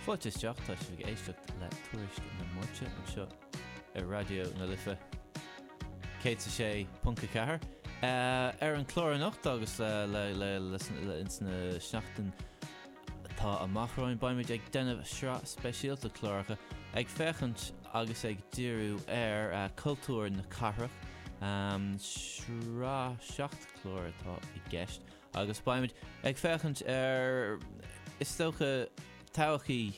Fáilte isteach, tá sibh ag éisteacht le Tuairisc na Máirte anseo ar Raidió na Life 106.4. Ar an chlár anocht agus insna seachtain atá amach romhainn, beimid ag déanamh sraith speisialta cláracha ag féachaint agus ag díriú ar cultúr na cathrach. Sraith seacht chlár atá i gceist. agus beimid ag féachaint ar, is dócha, todhchaí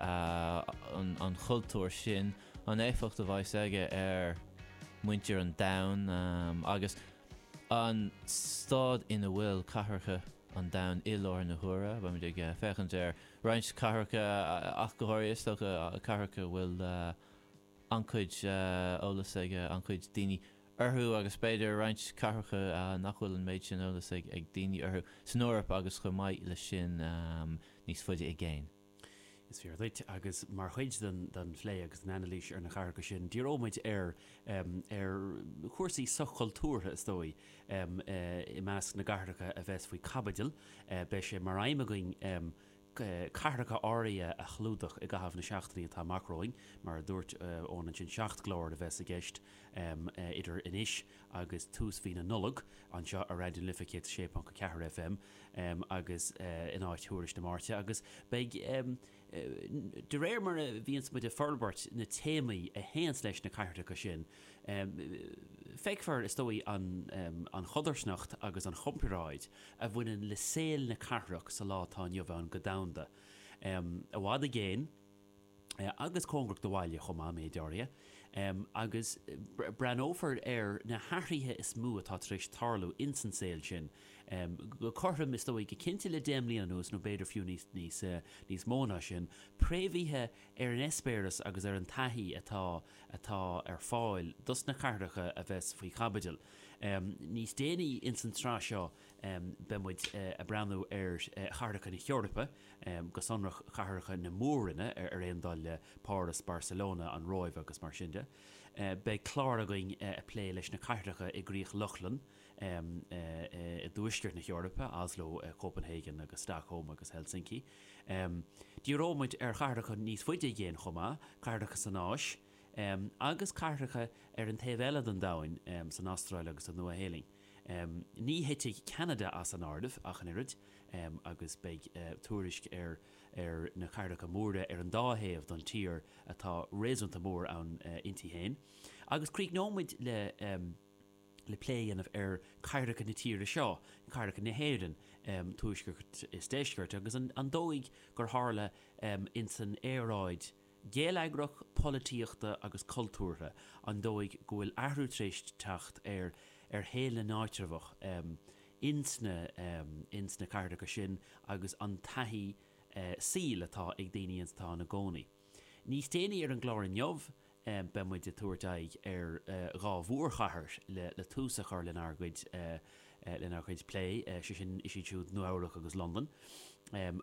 an chultúir sin, an éifeacht a bheas aige ar mhuintir an domhain agus an staid ina bhfuil cathracha an domhain i láthair na huaire. Beimid ag féachaint ar roinnt cathracha ach go háirithe, is dócha, cathracha a bhfuil an-chuid eolais ag an-chuid daoine orthu agus b'fhéidir roinnt cathracha nach bhfuil an méid sin eolas ag daoine orthu, san Eoraip agus chomh maith leis sin, níos faide i gcéin. Is fíor duit, agus mar chuid den phlé agus den anailís ar na cathracha sin, díreoidh muid ar chúrsaí soch-chultúrtha, is dóigh, i measc na gcathracha a bheas faoi chaibidil. Beidh sé mar aidhm againn cathracha áirithe a chlúdach i gcaitheamh na seachtainí atá amach romhainn. Mar a dúirt Eoin ansin, seacht gclár a bheas i gceist idir anois agus tús mhí na Nollag, anseo ar Raidió na Life 106.4 FM agus in áit Thuairisc na Máirte, agus beidh, de réir mar a bhíonns muid ag forbairt, na téamaí a théanns leis na cathracha sin. Feicfear, is dóigh, an chodarsnacht agus an chomparáid a bhaineann le saol na cathrach sa lá atá inniu ann go domhanda, i bhfad i gcéin, agus cóngarach do bhaile chomh maith, méid áirithe, agus breathnófar ar na hathruithe is mó atá tar éis tarlú ins an saol sin, go cothrom, is dóigh, go cinnte le deich mbliana anuas, nó b'fhéidir fiú níos mó ná sin, préamhaithe ar an eispéireas agus ar an taithí atá atá ar fáil dos na cathracha a bheas faoi chaibidil. Níos déanaí ins an tsraith seo beidh muid a' breathnú ar chathracha na hEorpa, go sonrach cathracha na Mór-roinne ar aon dul le Páras, Barcelona, an Róimh agus mar sin de. Beidh clár againn a' plé leis na cathracha i gCríoch Lochlann, i dTuaisceart na hEorpa, Oslo, Copenhagen agus Stockholm agus Helsinki. Díreoidh muid ar chathracha níos faide i gcéin chomh maith, cathracha san Áis, agus cathracha ar an taobh eile den domhain, san Astráil agus sa Nua-Shéalainn. Ní thitfidh Ceanada as an áireamh ach an oiread, agus beidh tuairisc ar na cathracha móra ar an dá thaobh den tír atá réasúnta mór ann inti féin. Agus críochnóidh muid le. le plé a dhéanamh ar chathracha na tíre seo, cathracha na hÉireann, tuaisceart is deisceart, agus an dóigh gur tharla ins an aeráid gheilleagrach, polaitíochta agus cultúrtha, an dóigh go bhfuil athrú tar éis teacht ar shaol na n-áitreabhach ins na cathracha sin agus an taithí saoil atá ag daoine ins atá ina gcónaí. Níos déanaí ar an gclár inniu, beidh muid ag tabhairt aghaidh ar dhá mhórchathair le tús a chur lenár gcuid plé, sé sin, is iad siúd Nua Eabhrac agus Londain,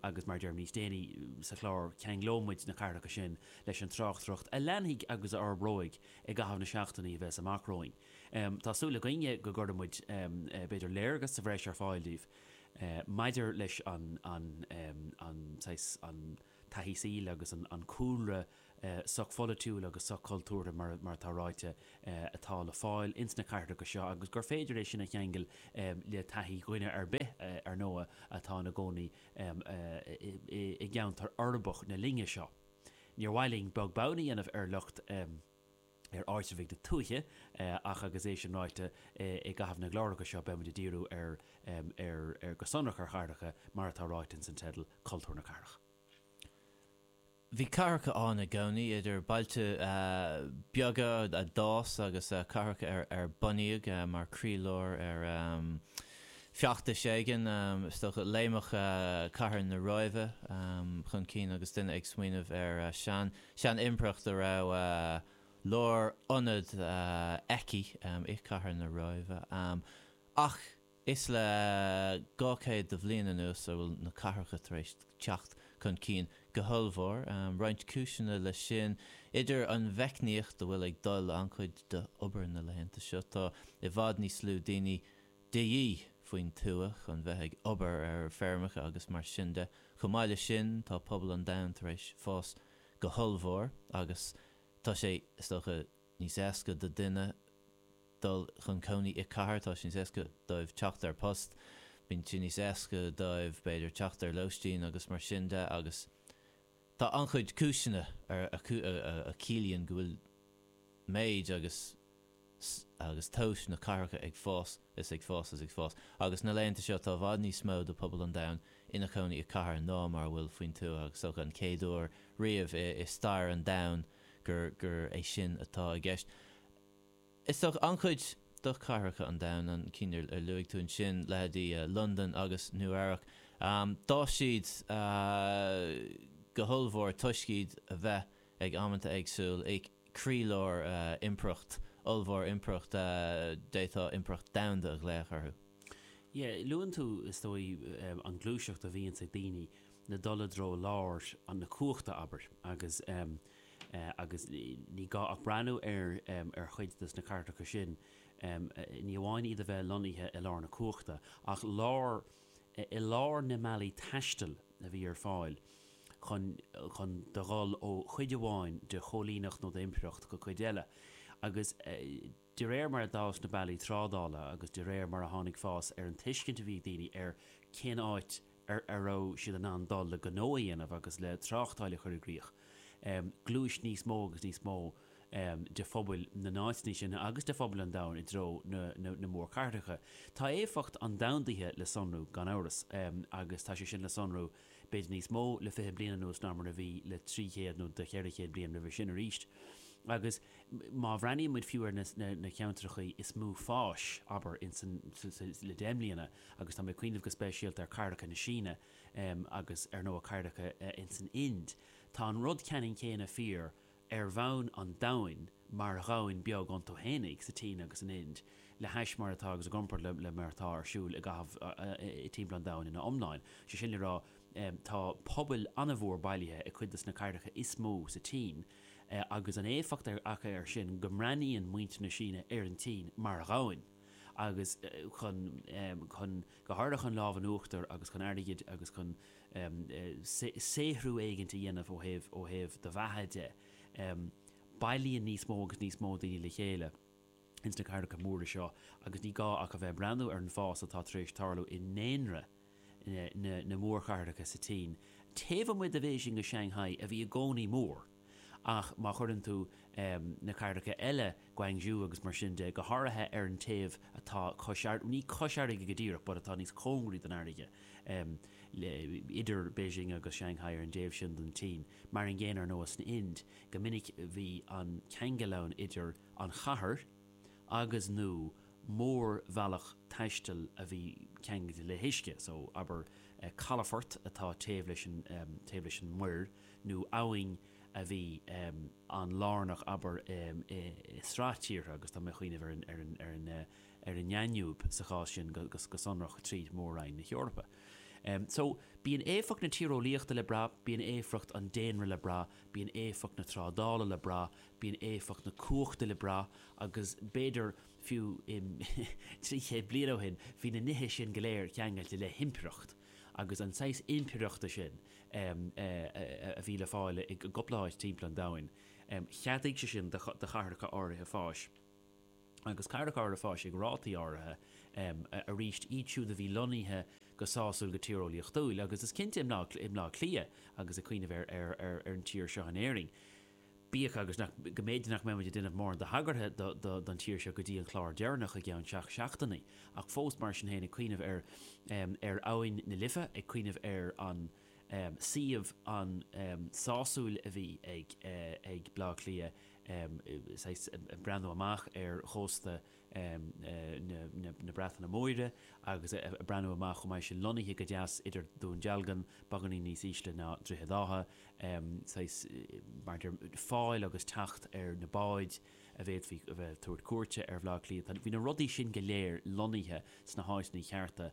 agus mar a deirim níos déanaí sa chlár, ceanglóidh muid na cathracha sin leis an tráchtaireacht a leanfaidh agus a fhorbróidh i gcaitheamh na seachtainí a bheas amach romhainn. Tá súil againne go gcuirfidh muid b'fhéidir léargas sa bhreis ar fáil daoibh maidir leis an saghas, an. taithí saoil agus an cúlra sochpholaitiúil agus sochchultúrtha, mar atá ráite, atá le fáil ins na cathracha seo agus gur féidir é sin a cheangal le taithí dhuine ar bith, ar ndóigh, atá ina gcónaí i gceantar uirbeach na linne seo. Níor mhaith linn beag beann a dhéanamh ar lucht. ar áitreabhaigh na tuaithe, ach agus é sin ráite, i gcaitheamh na gcláracha seo beidh muid ag díriú ar, ar, ar, go sonrach ar chathracha, mar atá ráite ins an teideal, Cultúr na Cathrach. Bhí cathracha ann i gcónaí, idir bailte beaga a d'fhás agus cathracha ar, ar bunaíodh mar croílár ar feachtas éigin, is dócha, léimfeadh cathair na Róimhe chun cinn agus duine ag smaoineamh ar Sean, sean impireacht a raibh a lárionad aici i cathair na Róimhe. Ach is le dhá chéad de bhliain anuas a bhfuil na cathracha tar éis teacht chun cinn go hollmhór. Roinnt cúiseanna leis sin, idir an mheicneoireacht a bhfuil ag dul an-chuid d'obair na laethanta seo, tá i bhfad níos lú daoine de dhíth faoin tuath chun bheith ag obair ar feirmeacha agus mar sin de. Chomh maith leis sin, tá pobal an domhain tar éis fás go hollmhór agus tá sé, is dócha, níos éasca do duine dul chun cónaí i cathair, tá sé níos éasca dóibh teacht ar post, bíonn sé níos éasca dóibh, b'fhéidir, teacht ar lóistín agus mar sin de agus tá an-chuid cúiseanna a chiallaíonn go bhfuil méid agus. Agus tomhas na cathracha ag fás is ag fás is ag fás, agus na laethanta seo tá i bhfad níos mó de pobal an domhain ina chónaí i cathair ná mar a bhfuil faoin tuath agus seo an chéad uair riamh i stair an domhain gur gur é sin atá i gceist. Is dócha an-chuid do chathracha an domhain, na cinn ar ar luaigh tú ansin, leithéidí Londain agus Nua Eabhrac, d'fhás siad go hollmhór toisc iad a bheith. ag amanta éagsúil, i gcroílár impireacht ollmhór, impireacht a d'fhéadfá impireacht domhanda a ghlaoch uirthi. E, luann tú, is dóigh, an ghluaiseacht a bhíonns ag daoine, ná dul i dtreo lár na cumhachta, abair, agus agus ní gá ach breathnú ar ar chuid de na cathracha sin, ní amháin iad a bheith lonnaithe i lár na cumhachta, ach lár i lár na mbealaí taistil a bhí ar fáil, chun chun do dhul ó chuid amháin de chóilíneacht nó d'impireacht go cuid eile, agus de réir mar a d'fhás na bealaí trádála agus de réir mar a tháinig fás ar an tuiscint a bhí ag daoine ar cén áit a raibh siad in ann dul le gnó a dhéanamh agus le tráchtáil a chur i gcrích, ghluais níos mó agus níos mó de phobail na n-áiteanna sin agus de phobail an domhain i dtreo na mórchathracha. Tá éifeacht an domhandaithe le sonrú, gan amhras, agus tá sé sin le sonrú, b'fhéidir níos mó, le fiche bliain anuas ná mar a bhí le trí chéad nó le ceithre chéad bliain roimhe sin arís. Agus má bhreathnaíonn muid fiú ar na cathracha is mó fáis, abair, le deich mbliana, agus tá mé ag cuimhneamh go speisialta ar chathracha na Síne agus, ar ndóigh, cathracha in san Ind, tá an rud ceannann céanna fíor, ar bhonn an domhain mar dhomhan beag iontu fhéinig, sa tSín agus san Ind, le hais mar atá agus i gcomparáid le mar atá ar siúil i gcaitheamh timpeall an domhain ina iomláine. Sé sin le rá, tá pobail an-mhór bailithe i gcuid de na cathracha is mó sa tSín agus an éifeacht acu ar sin go mbreathnaíonn muintir na Síne ar an tSín mar dhomhan agus chun go háirithe chun lámh in uachtar agus chun airgid agus chun em. saothrú éigin a dhéanamh ó thaobh, ó thaobh do bheatha de. Em. bailíonn níos mó agus níos mó daoine le chéile ins na cathracha móra seo agus ní gá ach a bheith ag breathnú ar an bhfás atá tar éis tarlú i ndaonra na, na, na mórchathracha sa tSín, taobh amuigh de Bhéising is Shang-hai a bhí i gcónaí mór. ach má chuireann tú na cathracha eile, Guangzhou agus mar sin de, go háirithe ar an taobh atá cois fharraige, ní cois fharraige go díreach but atá níos cóngaraí don fharraige, idir Beijing agus Shanghai ar an dtaobh sin den tSín, mar an gcéanna, ar ndóigh, san Ind, go minic bhí an ceangal ann idir an chathair agus, nó mórbhealach taistil a bhí ceangailte le huisce, so abair calafort atá taobh leis an, taobh leis an muir, nó abhainn a bhí an-lárnach, abair, i sraith tíortha, agus tá mé ag cuimhneamh ar an nDanube sa chás sin go sonrach trí Mhór-Roinn na hEorpa. So, bíonn éifeacht na tíreolaíochta le brath, bíonn éifeacht an daonra le brath, bíonn éifeacht na trádála le brath, bíonn éifeacht na cumhachta le brath, agus b'fhéidir, fiú, trí chéad bliain ó shin, bhí na nithe sin go léir ceangailte le himpireacht, agus an saghas impireachta sin, a bhí le fáil i gcupla áit timpeall an domhain. Cheadaigh sé sin do chathracha áirithe fáis, agus cathracha áirithe fáis ag rátaí áirithe arís, iad siúd a bhí lonnaithe go sásúil go tíreolaíochtúil, agus is cinnte i mBleá Cliath agus ag cuimhneamh ar an tír seo in Éirinn. Bíodh agus nach, go mb'fhéidir nach mbeimid ag déanamh mórán de thagartha don tír seo go dtí an clár deireanach i gceann seacht seachtainí, ach fós mar sin féin ag cuimhneamh ar, ar abhainn na Life, ag cuimhneamh ar an suíomh an-sásúil a bhí ag, ag Bleá Cliath, saghas breathnú amach ar chósta na Breataine Móire agus ag breathnú amach chomh maith sin, lonnaithe go deas idir Dún Dealgan, beagáinín níos ísle ná Droichead Átha, saghas maidir fáil agus teacht ar na báid a bhféadfaí a bheith ag tabhairt cuairte ar Bhaile Átha Cliath. Bhí na rudaí sin go léir lonnaithe sna háiteanna chearta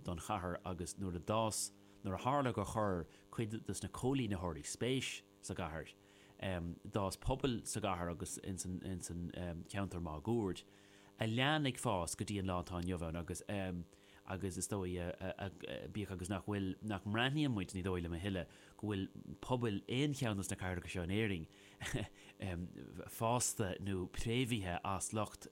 don chathair agus nuair a d'fhás, nuair a tharla gur chuir cuid de na cóilínitheoirí spéis, sa gcathair. D'fhás pobail sa gcathair agus ins an cheantar máguaird, a lean ag fás go dtí an lá atá inniu ann agus agus is dóigh, bíodh agus nach bhfuil, nach mbreathnaíonn muid, ní dóigh liom a thuilleadh, go bhfuil pobail aon cheann de na cathracha seo in Éirinn fásta nó préamhaithe as lucht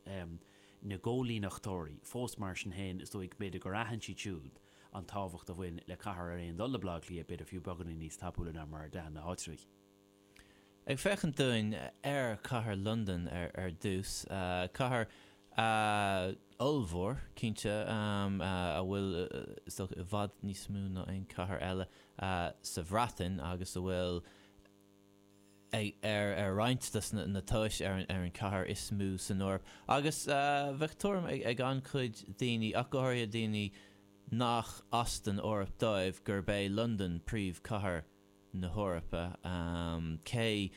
na gcóilíneachtóirí fós. Mar sin féin, is dóigh, b'fhéidir, gur aithin siad siúd, an tábhacht a bhain le cathair ar aon dul le Baile Átha Cliath, b'fhéidir fiú beagáinín níos tapúla ná mar a d'aithin na háitritheoirí. Ag féachaint dúinn ar chathair Londain ar dtús, cathair ollmhór, cinnte, a bhfuil, is dócha, i bhfad níos mó ná aon chathair eile sa Bhreatain agus a bhfuil, ar roinnt de na tomhais ar an chathair is mó san Eoraip agus bheadh tuairim ag an-chuid daoine, ach go háirithe daoine nach as an Eoraip dóibh, gurb é Londain príomhchathair na hEorpa, cé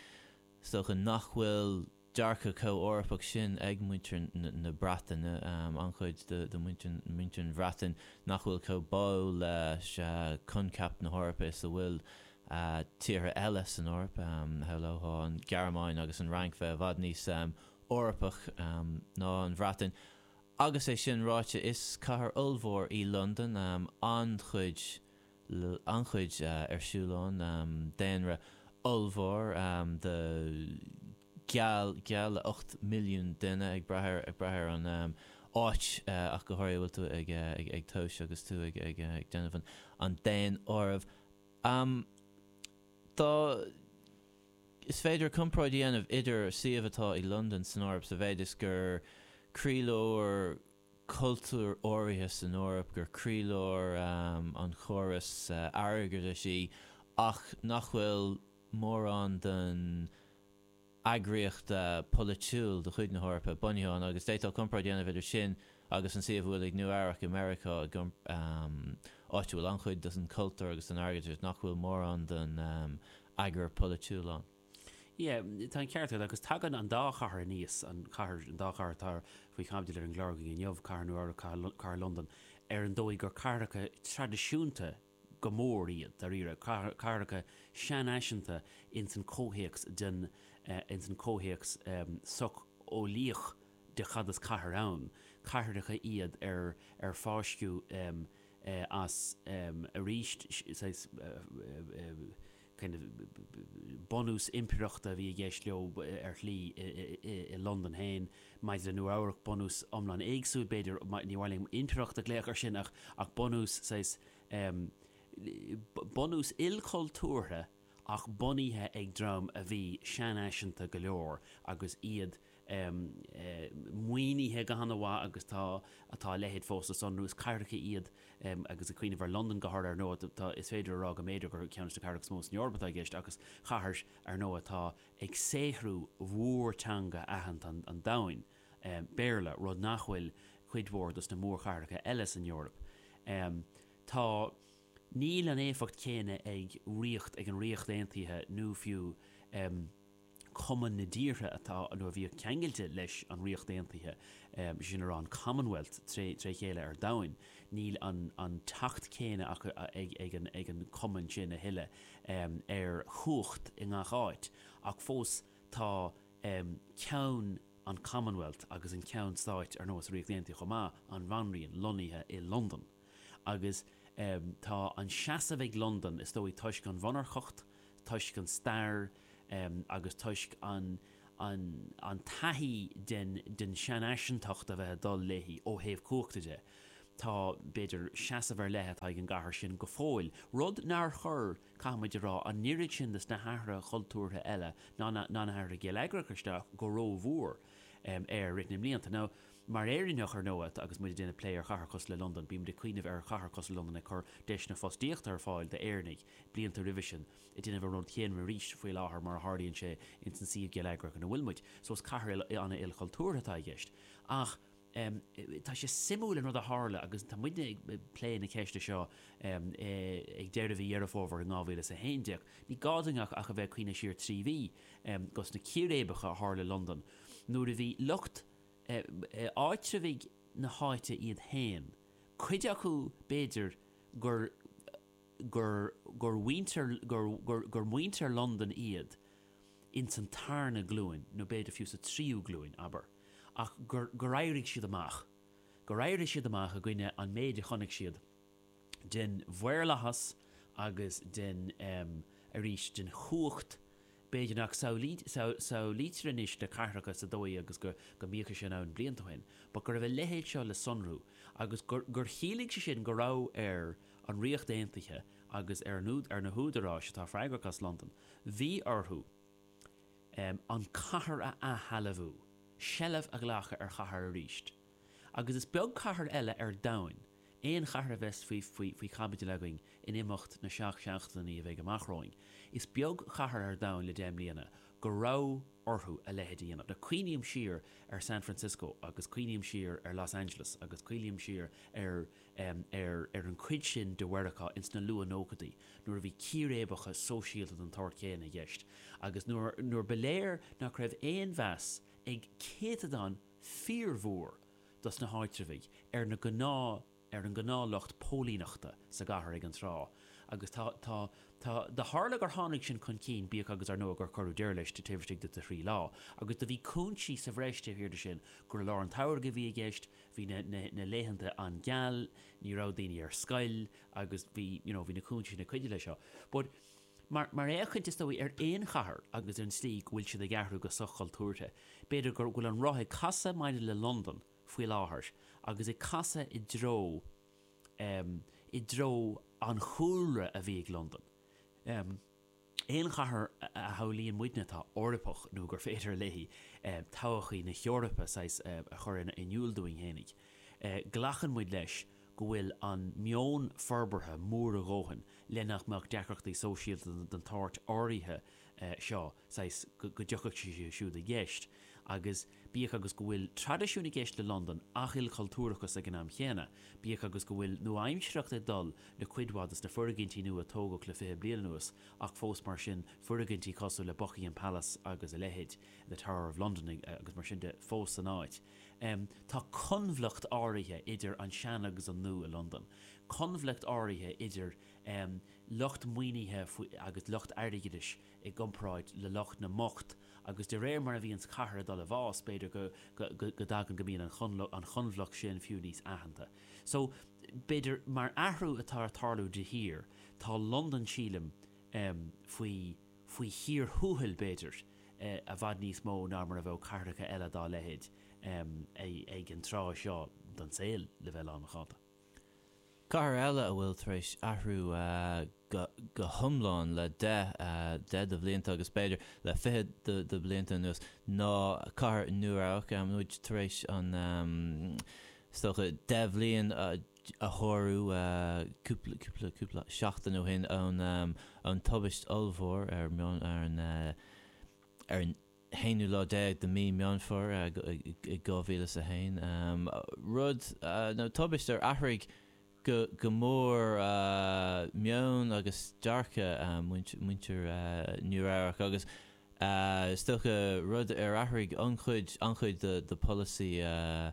is dócha nach bhfuil dearcadh comh-Eorpach sin ag muintir na Breataine, an-chuid de mhuintir an Bhreatain nach bhfuil chomh báúil le coincheap na hEorpa is a bhfuil tíortha eile san Eoraip, shamhlófá an Ghearmáin agus an Fhrainc bheith i bhfad níos Eorpach ná an Bhreatain. Agus é sin ráite, is cathair ollmhór í Londain, an-chuid. an-chuid ar siúl ann, daonra ollmhór de geall le 8 milliún duine, ag brath ar an áit ach go háirithe a bhfuil tú ag tomhais agus tú ag déanamh an daonáirimh. Tá, is féidir comparáid a dhéanamh idir suíomh atá ag Londain san Eoraip sa mhéid is gur croílár, cultúir áirithe san Eoraip, gur croílár an chórais airgeadais í ach nach bhfuil mórán den eagraíocht pholaitiúil de chuid na hEorpa bunaithe ann, agus d'fhéadfá comparáid a dhéanamh idir sin agus an suíomh atá ag Nua-Eabhrac i Meiriceá, áit a bhfuil an-chuid den chultúr agus den airgeadas ach nach bhfuil mórán den eagar polaitiúil ann. Yeah, tá an ceart agat, agus tagann an dá chathair aníos, an chathair, an dá chathair atá faoi chaibidil ar an gclár againn inniu, Cathair Nua-Eabhrac, Cathair, Cathair Londan, ar an dóigh gur cathracha traidisiúnta go mór iad, dáiríre, cathair, cathracha seanfhaisiúnta ins an comhthéacs den, ins an comhthéacs socheolaíoch de cad is cathair ann, cathracha iad ar, ar fáisceadh as, arís, saghas, bunús impireachta a bhí i gceist leo ar shlí i Londain féin. Maidir le Nua Eabhrac, bunús iomlán éagsúil b'fhéidir, níor mhaith liom impireacht a ghlaoch ar sin ach bunús saghas, bunús ilchultúrtha ach bunaithe ag dream a bhí seanfhaisiúnta go leor agus iad, eh, maoinithe go han-mhaith agus tá, tá a leithéid fós le sonrú. Is cathracha iad, em, agus ag cuimhneamh ar Londain go háirithe, ar ndóigh, tá, tá, is féidir a rá go mb'fhéidir gur ceann de na cathracha is mó san Eoraip atá i gceist ach is cathair, ar ndóigh, atá ag saothrú mhórtheanga aitheanta an, an domhain, em, Béarla, rud nach bhfuil cuid mhór dos na mórchathracha eile san Eoraip. Em, tá, níl an éifeacht chéanna ag ríocht, ag an Ríocht Aontaithe nó fiú, em, Cumann na dTíortha atá nó a bhíodh ceangailte leis an Ríocht Aontaithe, is é sin le rá an Commonwealth tré chéile ar domhain, níl an teacht céanna acu ag an Cumann sin a thuilleadh ar chumhacht i ngach áit, ach fós tá Ceann an Commonwealth agus an Ceann Stáit, ar ndóigh sa Ríocht Aontaithe chomh maith, an Bhanríon, lonnaithe i Londain. agus tá an seasamh ag Londain, is dóigh, toisc an mhonarcacht, toisc an stair agus toisc an taithí den seanfhaisiúntacht a bheith ag dul léi ó thaobh cumhachta de. Tá, b'fhéidir, seasamh ar leith atá ag an gcathair sin go fóill, rud nár chuir, caithfimid a rá, an oiread sin des na hathruithe cultúrtha eile, ná na hathruithe geilleagracha, isteach go rómhór air i rith na mblianta. Mar Éireannach, ar ndóigh, agus muid ag déanamh plé ar chathair cosúil le Londain, bímid ag cuimhneamh ar chathair cosúil le Londain ag cur deiseanna fostaíochta ar fáil d'Éireannaigh, blianta roimhe sin, ag déanamh an rud chéanna arís, faoi láthair, mar a tharlaíonn sé, ins an suíomh geilleagrach ina bhfuil muid. So is cathair an-ilchultúrtha atá i gceist. Ach tá sé suimiúil an rud a tharla, agus tá muidne ag plé na ceiste seo ag deireadh mhí Dheireadh Fómhair in dhá mhíle is a haon déag, ní gá duinn ach a bheith ag cuimhneamh siar trí mhí, gos na círéibeacha a tharla i Londain, nuair a bhí lucht. áitreabhaigh na háite iad féin, cuid acu b'fhéidir gur gur gur mhuintir gur gur gur muintir Londain iad ins an tarna glúin nó b'fhéidir fiú sa tríú glúin, abair, ach gur gur éirigh siad amach gur éirigh siad amach i gcoinne an méid a chonaic siad den mhaorlathas agus den, arís, den chumhacht. B'fhéidir nach samhlaítear anois le cathracha sa dóigh agus go mbíodh sé roinnt blianta ó shin, but go raibh a leithéid seo le sonrú agus gur chiallaigh sé sin go raibh ar an Ríocht Aontaithe agus ar na húdaráis atá freagrach as Londain, bhí orthu an cathair a athshealbhú, seilbh a ghlacadh ar chathair arís. Agus is beag cathair eile ar domhain, aon chathair a bheas faoi chaibidil againn in imeacht na seacht seachtainí a bheidh amach romhainn, is beag cathair ar domhain le deich mbliana go raibh orthu a leithéid a dhéanamh. Cuimhním siar ar San Francisco agus cuimhním siar ar Los Angeles agus cuimhním siar ar an chuid sin de Mheiriceá ins na luath-nóchaidí nuair a bhí círéibeacha sóisialta den tsórt chéanna i gceist agus nuair ba léir nach raibh aon mheas ag céatadán fíormhór dos na háitreabhaigh ar na gnáth ar an ngnáth lucht póilíneachta sa gcathair ag an tráth agus tá tá tá do tharla gur tháinig sin chun cinn bíodh agus ar ndóigh gur cuireadh deireadh leis taobh istigh de thrí lá agus do bhí cúinsí sa bhreis taobh thiar de sin gur i lár an tsamhraidh a bhí i gceist bhí na na na laethanta an-gheal ní raibh daoine ar scoil agus bhí you know bhí na cúinsí sin ag cuidiú le seo but Mar fhéachaint, is dóigh, ar aon chathair agus ar an tslí go bhfuil siad ag athrú go soch-chultúrtha, b'fhéidir go bhfuil an roth ag casadh maidir le Londain faoi láthair agus ag casadh i dtreo, em, i dtreo an chúlra a bhí ag Londain. Em. aon chathair a shamhlaíonn muidne atá Eorpach nó gur féidir léi, em, todhchaí na hEorpa, saghas, a chur in iúl dúinn fhéinig, eh, glacann muid leis go bhfuil an meon forbartha mór a dhóthain le nach mbeadh deacrachtaí sóisialta den tsórt áirithe seo, saghas, go dtiocfadh siad siúd i gceist, agus bíodh agus go bhfuil traidisiún i gceist le Londain ach ilchultúrachas ag an am chéanna, bíodh agus go bhfuil nua-aimsearthacht ag dul le cuid mhaith de na foirgintí nua a tógadh le fiche bliain anuas ach fós mar sin foirgintí cosúil le Buckingham Palace agus a leithéid, The Tower of London agus mar sin de fós san áit. Tá coinbhleacht áirithe idir an sean agus an nua i Londain, coinbhleacht áirithe idir lucht maoinithe agus lucht airgeadais i gcomparáid le lucht na mbocht agus de réir mar a bhíonns cathair ag dul i bhfás b'fhéidir go dtagann go mbíonn an choinbhleacht sin fiú níos aitheanta. So b'fhéidir mar athrú atá ag tarlú de shíor, tá Londain sílim faoi, faoi thír thuathail, b'fhéidir, i bhfad níos mó ná mar a bheadh cathracha eile dá leithéid ag an tráth seo den saol, le bheith lánmhacánta. Cathair eile a bhfuil tar éis athrú go hiomlán le deich, deich de bhlianta agus b'fhéidir le fiche de bhlianta anuas ná cathair Nua Eabhrac. Muid tar éis an, is dócha, deich bhliain, a shárú cúpla, cúpla, cúpla seachtain ó shin ón, ón tubaist ollmhór ar Meán, ar an, ar an haonú lá déag de mí Meán Fómhair, i, i, i dhá mhíle is a haon. Rud, nó tubaist a athraigh go, go mór meon agus dearcadh muintir, muintir Nua Eabhrac agus is dócha rud a athraigh an-chuid, an-chuid de, de pholasaí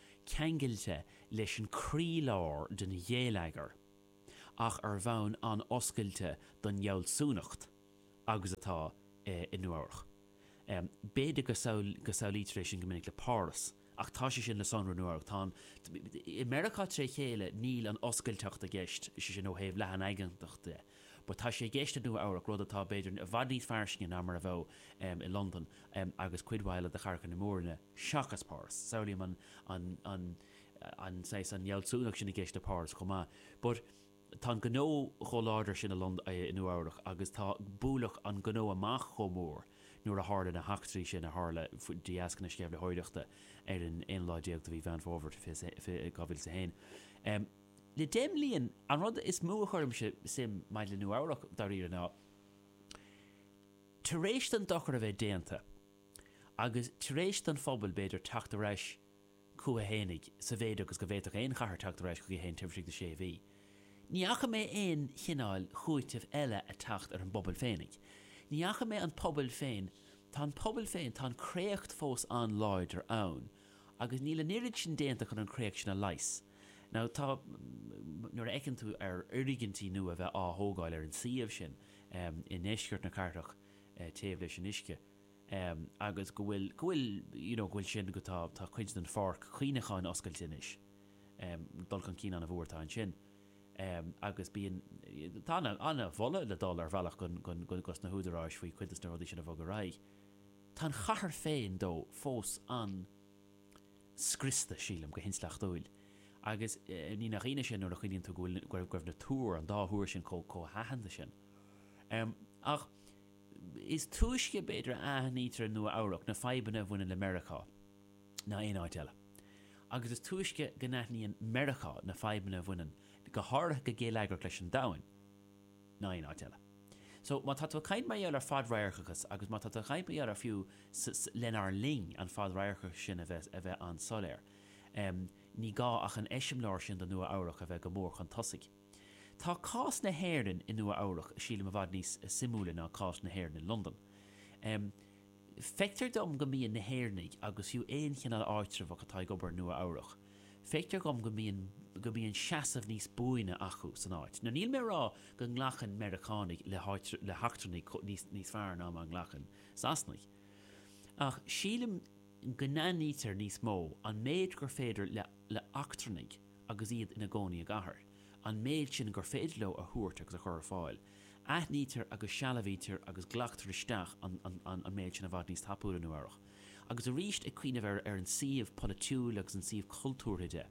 ceangailte leis an croílár den gheilleagar ach ar bhonn an-oscailte don fhealsúnacht agus atá i Nua Eabhrac. B'fhéidir go samhlaítear é sin go minic le Páras, ach tá sé sin le sonrú i Nua Eabhrac. Tá an, i Meiriceá tré chéile, níl an oscailteacht i gceist, is é sin ó thaobh leathanaigeantachta. but tá sé i gceist i Nua Eabhrac, rud atá, b'fhéidir, i bhfad níos fairsinge ná mar a bheadh i Londain agus cuid mhaith eile de chathracha na Mór-Roinne, seachas Páras. Samhlaím an, an, saghas, an fhealsúnacht sin i gceist i bPáras chomh maith, but tá an gnó chomh láidir sin i Londain, i Nua Eabhrac agus tá bualadh an ghnó amach chomh mór nuair a tharla na heachtraí sin a tharla de dheasca na sceimhlitheoireachta ar an aonú lá déag de mhí Mheán Fómhair, fiche, dhá mhíle is a haon. Le deich mbliain, an rud is mó a chuirimse suim ann maidir le Nua Eabhrac, dáiríre, ná tar éis don dochar a bheith déanta agus tar éis don phobal, b'fhéidir, teacht ar ais chucu fhéinig, sa mhéid agus go bhféadfadh aon chathair teacht ar ais chuici féin taobh istigh de sé mhí, ní fhaca mé aon chineál cúitimh eile ag teacht ar an bpobal féinig. Ní fhaca mé an pobal féin, tá an pobal féin, tá an créacht fós an-láidir ann agus níl an oiread sin déanta chun an chréacht sin a leigheas. Now tá, nuair a fheiceann tú ar fhoirgintí nua a bheith á thógáil ar an suíomh sin i ndeisceart na cathrach taobh leis an uisce agus go bhfuil, go bhfuil, you know, go bhfuil sin go, tá, tá cuid den pháirc chuimhneacháin oscailte anois, dul chun cinn an-mhór atá ansin agus bíonn, tá an-mholadh le dul ar bhealach go, go, go, dos na húdaráis faoi chuid des na rudaí sin a bhogadh ar aghaidh. Tá an chathair féin though fós an. scriosta, sílim, go hintleachtúil. Agus ní nach ionadh sin nuair a chuimhníonn tú go bhfuil, go raibh na túir, an dá thúr sin chomh haitheanta sin. Ach is túisce, b'fhéidir, a aithnítear i Nua Eabhrac na fadhbanna a bhaineann le Meiriceá ná aon áit eile. Agus is túisce go n-aithníonn Meiriceá na fadhbanna a bhaineann go háirithe go geilleagrach leis an domhan. ná aon áit eile. So, má tá tú ag caint mar gheall ar fad-radharcachas agus má tá tú ag caint mar gheall ar fiú lenár linn an fhad-radharcachas sin a bheith an-soiléir, ní gá ach an eiseamláir sin de Nua Eabhrach a bheith go mór chun tosaigh. Tá cás na hÉireann i Nua Eabhrach, sílim, i bhfad níos suimiúla ná cás na hÉireann i Londain. Feictear dom go mbíonn na hÉireannaigh, agus fiú aon chineál áitreabhach atá ag obair i Nua Eabhrach, feictear dhom go mbíonn, go mbíonn seasamh níos buaine acu san áit. Now níl mé a rá go nglacann Meiriceánaigh le, le heachtrannaigh níos, níos fearr ná mar a ghlacann Sasanaigh. Ach sílim go n-aithnítear níos mó an méid gur féidir le, le heachtrannaigh, agus iad ina gcónaí i gcathair, an méid sin gur féidir leo a thabhairt agus a chur ar fáil. Aithnítear agus sealbhaítear agus glactar isteach an méid sin i bhfad níos tapúla i Nua Eabhrach, agus arís, ag cuimhneamh ar an suíomh polaitiúil agus an suíomh cultúrtha de,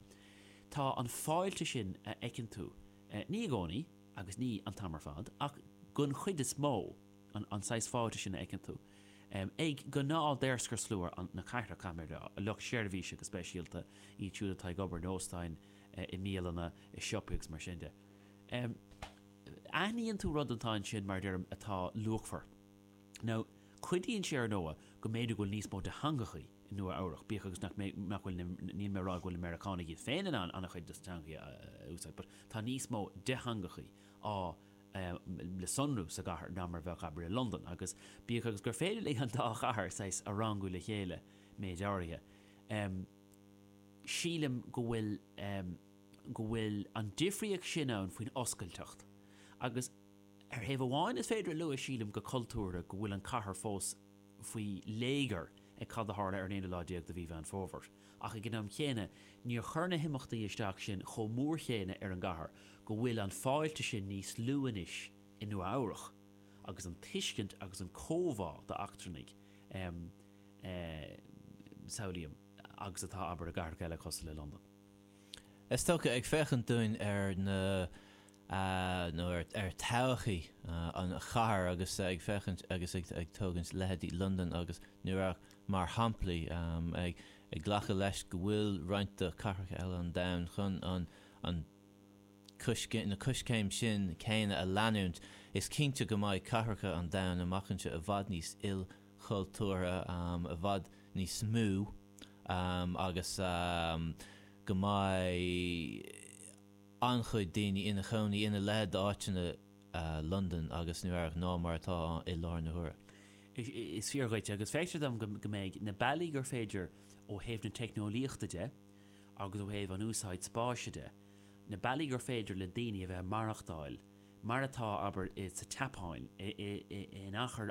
tá an fáilte sin a fheiceann tú, ní i gcónaí agus ní an t-am ar fad, ach den chuid is mó, an saghas fáilte sin a fheiceann tú. Ag gnáth daoscarshlua na cathrach, caithfimid a rá, lucht seirbhíse go speisialta, iad siúd atá ag obair in óstáin, i mbialanna, i siopaí agus mar sin de. Aithníonn tú rud atá ansin, mar a deirim, atá luachmhar. Now, cuidíonn sé ar ndóigh go mb'fhéidir go bhfuil níos mó de theangachaí i Nua Eabhrach, bíodh agus nach mbeidh, nach bhfuil, níl mé a rá go bhfuil na Meiriceánaigh iad féin in ann an-chuid de na teangachaí a úsáid but tá níos mó de theangachaí á le sonrú sa gcathair ná mar a bheadh, abair, i Londain, agus bíodh agus gur féidir linn an dá chathair saghas a rangú le chéile, méad áirithe, sílim go bhfuil, go bhfuil an difríocht sin ann faoin oscailteacht. Agus ar thaobh amháin is féidir a lua, sílim, go cultúrtha go bhfuil an cathair fós, faoi léigear ag cad a tharla ar an aonú lá déag de mhí Mheán Fómhair, ach ag an am chéanna níor chuir na himeachtaí isteach sin chomh mór chéanna ar an gcathair go bhfuil an fáilte sin níos lú anois i Nua Eabhrach agus an tuiscint agus an comhbhá do eachtrannaigh samhlaím agus atá abair i gcathracha eile cosúil le Londain. Is dócha ag féachaint dúinn ar na. a nó ar todhchaí an chathair agus ag féachaint agus ag tógaint leithéidí Londain agus New York mar shamplaí, ag glacadh leis go bhfuil roinnt de chathracha eile an domhain chun an coiscéim, na coiscéim sin céanna a leanúint. Is cinnte go mbeidh cathracha an domhain amach anseo i bhfad níos ilchultúrtha, i bhfad níos mó agus go mbeidh, an-chuid daoine ina chónaí ina leithéid d'áiteanna, Londain agus Nua Eabhrac, ná mar atá ann i láthair na huaire. Is fíor dhuit, agus feictear dom go mbeidh na bealaí gur féidir ó thaobh na teicneolaíochta de agus ó thaobh an úsáid spáis de, na bealaí gur féidir le daoine a bheith ag maireachtáil mar atá, abair, sa tSeapáin, in achar